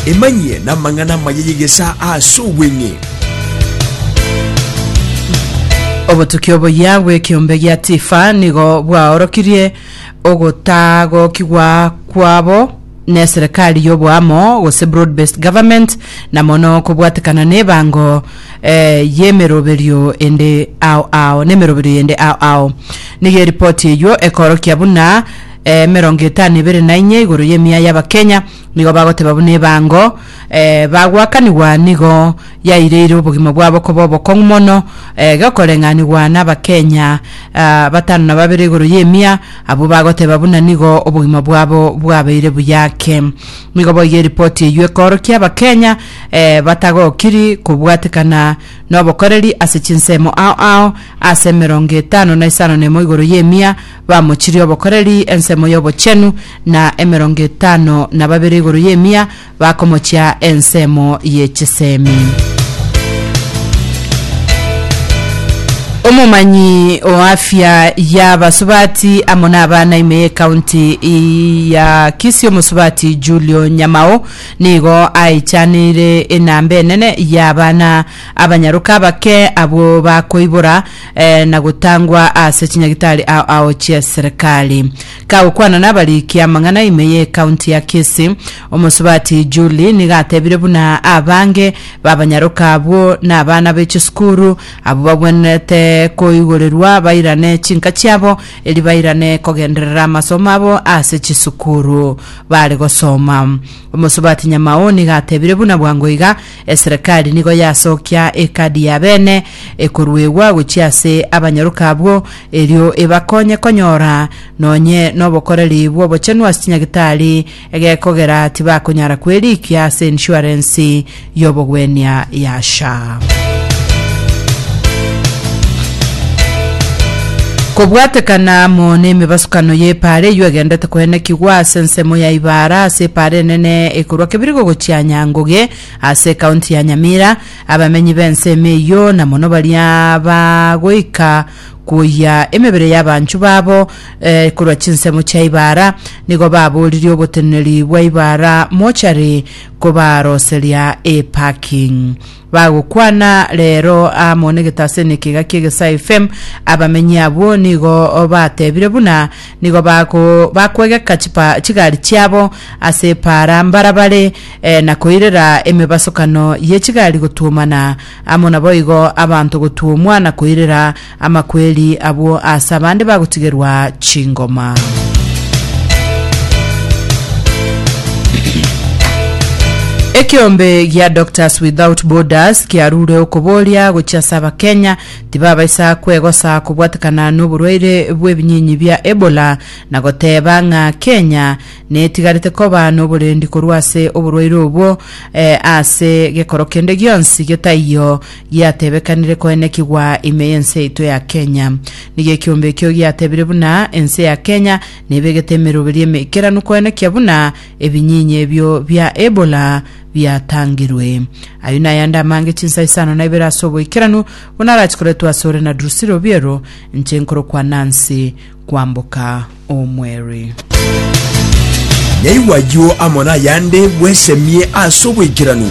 Emanyie namang'ana amaya y'egesaa ase obweng'e. Obotuki oboyia bw'ekiombe gia Tifa nigo bwaorokirie ogotagokigwa kwabo neserikali y'oboamo gose broad based government na mono kobwatekana nebango eh, y'emeroberio ende ao ao nemeroberio yende ao ao nigo eripoti eyio ekorokia buna eh, emerongo etano ebere na inye igoro y'emiya y'Abakenya nigo bagoteba buna ebango eh, bagwakanigwa nigo yaireire obogima bwabo koba obokong'u mono eh, gokoreng'anigwa n'Abakenya ah, batano na babere igoro y'emiya abwo bagoteba buna nigo obogima bwabo bwabeire buya ake nigo boiga eripoti eyio ekoorokia Abakenya eh, batagokiri kobwatekana n'obokoreri ase chinsemo ao ao ase emerongo etano na isano nemo igoro y'emiya Bamochirie obokoreri ensemo y'obochenu, na emerongo etano na babere igoro y'emia bakomochia ensemo ye chisemi. Omomanyi o afya y'abasubati amo n'abana ime y'ekaunti ya Kisii omosubati Julio Nyamao nigo aechaneire enamba enene y'abana abanyaroka abake abwo bakoibora eh, na gotangwa ase chinyagitari ao ao chia serikali. Kagokwana n'abariki amang'ana ime ye county ya Kisii, omosubati Julie nigo atebire buna abange babanyaroka abwo n'abana be chisukuru abwo bagwenerete koigorerwa bairane chinka chiabo eri bairane kogenderera amasomo abo ase chisukuru bare gosoma. Omosubati Nyamao nigo atebire buna bwango iga Eserekari nigo yasokia ekadi ya bene ekoruegwa gochia ase abanyaroka abwo, erio ebakonye konyora nonye nobokoreri bw'obochenu ase chinyagitari egekogera tibakonyara kwerikia ase ensuarensi y'obogwenia ya SHA. Kobwatekana amo nemebasukano y'epaara eyio egendete koenekigwa ase ensemo ya Ibaara ase epaara enene ekorwa Kebirigo gochia Nyanguge ase ekaunti ya Nyamira, abamenyi b'ensemo eyio na mono baria bagoika kwoyia emebere y'abanchu babo eh, korwa chinsemo chia Ibaara, nigo baboririe oboteneneri bwa Ibaara Mortuary kobaroseria eparking. bagokwana rero amo negetase nekiga kiegesai fem abamenyi abwo nigo batebire buna nigo bako bakwegeka chipa chigari chiabo ase epaara mbarabare eh, na koirera emebasokano ye chigari gotuomana amo naboigo abanto gotuomwa na koirera Amakweri abwo aase abande bagotigerwa chingoma. Ekeombe gia Doctors Without Borders kiarure okoboria gochia ase abakenya tibabaisa kwegosa kobwatekana noborwaire bw'ebinyinyi bia Ebola na goteba ng'a Kenya netigarete koba noborendi korwa ase oborwaire obwo eh, ase gekoro kende gionsi getaiyo Giatebekanire koenekigwa ime y'ense yaito ya Kenya. Nigo ekiombe ekio giatebire buna ense ya Kenya nebegete emeroberi eme ekeranu koenekia buna ebinyinya ebio bia Ebola biatangirwe. Ayio nayande amange chinsa isano na ibere ase oboikeranu buna arachi koretwa asore na Drusilla Obiero inche nkorokwa Nancy kwamboka omweri. Yaigwa ayio amo nayande bwesemie ase oboikeranu.